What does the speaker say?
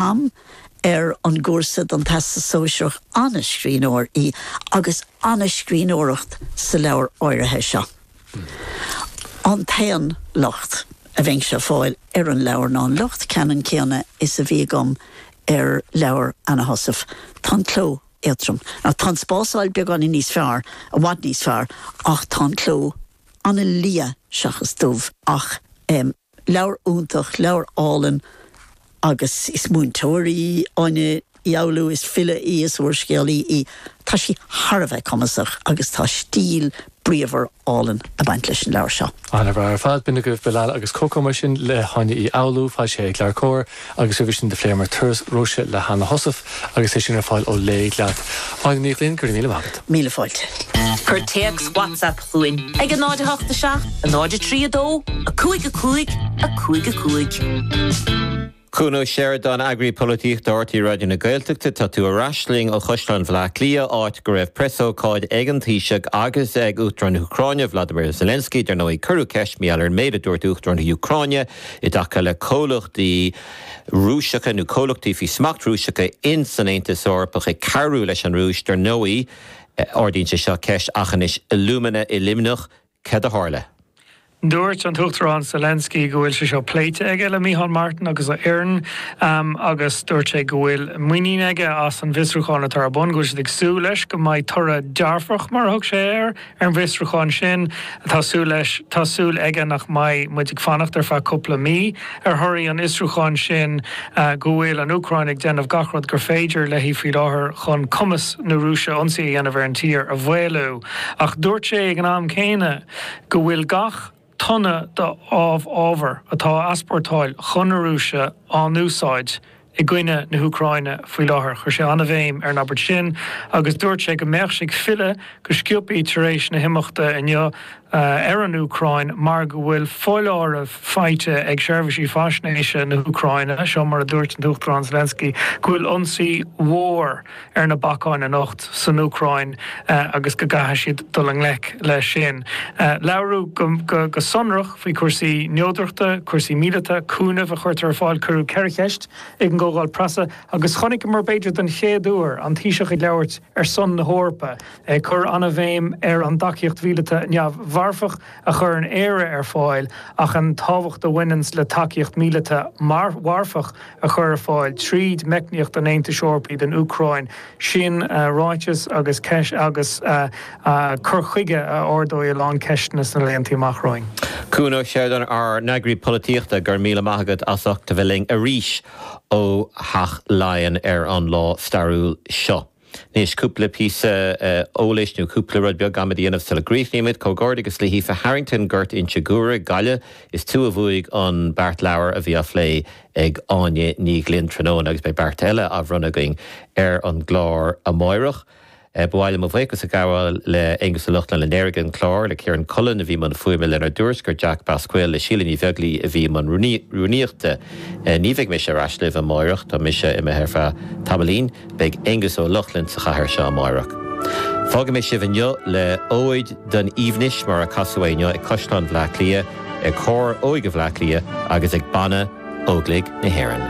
am ar an gcúrsa don Teastas Sóisearach, an-scríbhneoir í agus an-scríbhneoireacht sa leabhar áirithe seo. An t-aon locht a bheinnse ag fáil ar an leabhar ná an locht ceannann céanna is a bhí agam ar leabhar Anna Heussaff, tá an cló éadtrom. Tá an spásáil beagáinín níos fearr, i bhfad níos fearr, ach tá an cló an-liath seachas dubh ach, Leabhar iontach, leabhar álainn agus is múinteoir í Áine Uí Fhoghlú, is file í, is úrscéalaí í. Tá sí thar a bheith cumasach agus tá stíl bríomhar álainn ag baint leis an leabhar seo. Ana-bhreá ar fad. B'in agaibh Bilal agus Coco mar sin le hÁine Uí Fhoghlú. Tá sé ag LeabhairCOMHAR. agus roimhe sin do phléamar Turas Róise le hAnna Heussaff agus é sin ar fáil ó Léigh Leat. Áine Ní Ghlinn, go raibh míle maith agat. Míle fáilte. Cuir téacs WhatsApp chugainn ag 087 03 2 5 5 5 5. Chuain Uí Sheireadáin, Eagraí Polaitíochta RTÉ Raidió na Gaeltachta tá tú ar ais linn ó Chaisleán Bhleá Cliath, áit go raibh preasócáid ag an Taoiseach agus ag Uachtarán na hÚcráine, Volodymyr Zelensky. Dar ndóigh, cuireadh ceist ar Mhicheál ar an méid a dúirt Uachtarán na hÚcráine. i dtaca le comhlachtaí Rúiseacha nó comhlachtaí faoi smacht Rúiseacha ins an Aontas Eorpach ag cabhrú leis an Rúis. Dar ndóigh, ardaíonn sé seo ceist, Aughinish Alumina i Luimneach, cad a tharla? Dúirt an tUachtarán Zelensky go bhfuil sé seo pléite aige le Micheál Martin agus a fhoireann agus dúirt sé go bhfuil muinín aige as an bhfiosrúchán atá ar bun, go bhfuil siad ag súil leis go mbeidh toradh dearfach, mar a thug sé air. Ar an bhfiosrúchán sin, tá súil leis, tá súil aige nach mbeidh muid ag fanacht ar feadh cúpla mí. Ar thoradh an fhiosrúcháin sin go bhfuil an Úcráin ag déanamh gach rud gur féidir léi faoi láthair chun cumas na Rúise ionsaí a dhéanamh ar an tír a mhaolú. Ach dúirt sé ag an am céanna go bhfuil gach tonna d'amhábhar atá á easpórtáil chun na Rúise á n-úsáid i gcoinne na hÚcráine faoi láthair. Chuir sé an-bhéim ar an abairt sin agus dúirt sé go mbeadh sé ag filleadh go sciobthaí tar éis na himeachta inniu ar an Úcráin mar go bhfuil foláireamh faighte ag seirbhísí faisnéise na hÚcráine, seo mar a dúirt an tUachtarán Zelensky, go bhfuil ionsaí mhór. ar na bacáin anocht san Úcráin agus go gcaithfidh siad dul i ngleic leis sin. Labhair go sonrach faoi cúrsaí neodrachta, cúrsaí míleata, cúnamh a chuirtear ar fáil, cuireadh ceithre cheist ag an gcomhdháil preasa agus chonaiceamar, b'fhéidir don chéad uair, an Taoiseach ag labhairt ar son na hEorpa, ag cur an-bhéim ar an dtacaíocht mhíleata neamh-mharfach, a chuireann Éire ar fáil ach an tábhacht a bhaineanns le tacaíocht mhíleata mharfach a chur ar fáil tríd meicníocht an Aontais Eorpaigh don Úcráin, sin ráiteas agus ceist agus cur chuige a ardóidh a lán ceisteanna sna laethanta amach romhainn. Cuan Ó Seireadáin ár n-eagraí polaitíochta, go raibh míle maith agat as ucht a bheith linn arís ó Theach Laighean ar an lá stairiúil seo. Anois, cúpla píosa eolais nó cúpla rud beag agam le déanamh sula gcríochnaímid. Comhghairdeachas le hAoife Harrington, Gort Inse Guaire, Gaillimh. Is tú a bhuaigh an beart leabhar a bhí á phlé ag Áine Ní Ghlinn tráthnóna agus beidh beart eile á bhronnadh againn ar an gclár amáireach. Ba mhaith liom mo bhuíochas a ghabháil le Aonghus Ó Lochlainn a léirigh an clár, le Ciaran Cullen a bhí i mbun fuaime lenár dtuairisceoir Jack Basquel, le Síle Ní Bheaglaoi a bhí i mbun rúnaíochta. Ní bheidh mise ar ais libh amáireach, tá mise imithe ar feadh tamaillín. Beidh Aonghus Ó Lochlainn sa chathaoir seo amáireach. Fágfaidh mé sibh inniu le Óid don Aoibhneas mar a casadh é inniu ag Caisleán Bhleá Cliath, ag Cór Óige Bhleá Cliath agus ag Banna Óglaigh na hÉireann.